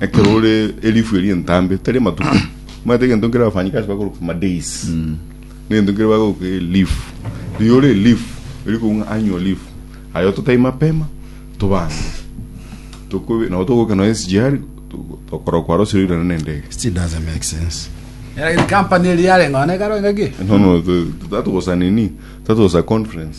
ekero ore elifu eria entambe tari amatuko omanyete egento nkere abafanyikazi bakorwa ku madays negento nkere bakorwa ku leaf riria ore leaf eri kong'a annual leaf aye totai mapema tobange tokobe nabo togoka noe SGR to- tokorwa kwarosire oirana na endege Still doesn't make sense. Era company eri yarenga one karo engaki. no no to- to- tatogosa nini tatogosa conference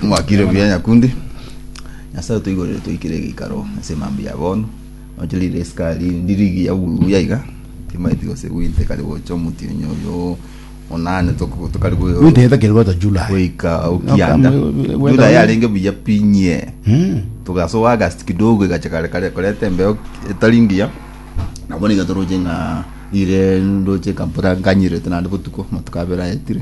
Mwakire buya nyakundi. Nyasae otoigorere toikire egeikaro ase emambia ya bono. Noche rire esika ri ndirigi ya buya iga. Timaeti gose gwinte kare gocha omuti onye oyo onane toko tokari go Wite heta kiri gota July. goika okianda. Okama- wenda- Jula yarenge buya pinye. Mm. Tugasoa August kidogo igacha kare kare koreta embeo etari ngiya. Na bono iga toroche ng'a rire ndoche kampora nkanyirete naende botuko amatuko abere ayetire.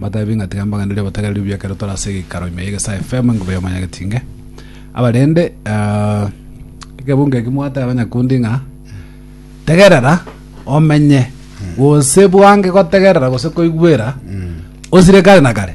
Batabie ng'a tiga mbagende riria batari aria obiakera otore ase egekaro ime y'egesaa efemo enguba y'omonyagetinge. Abarende, ah, egebunga eki mwateba abanyakundi ng'a tegerera omenye gose bwange gotegerera gose koigwera osire kare na kare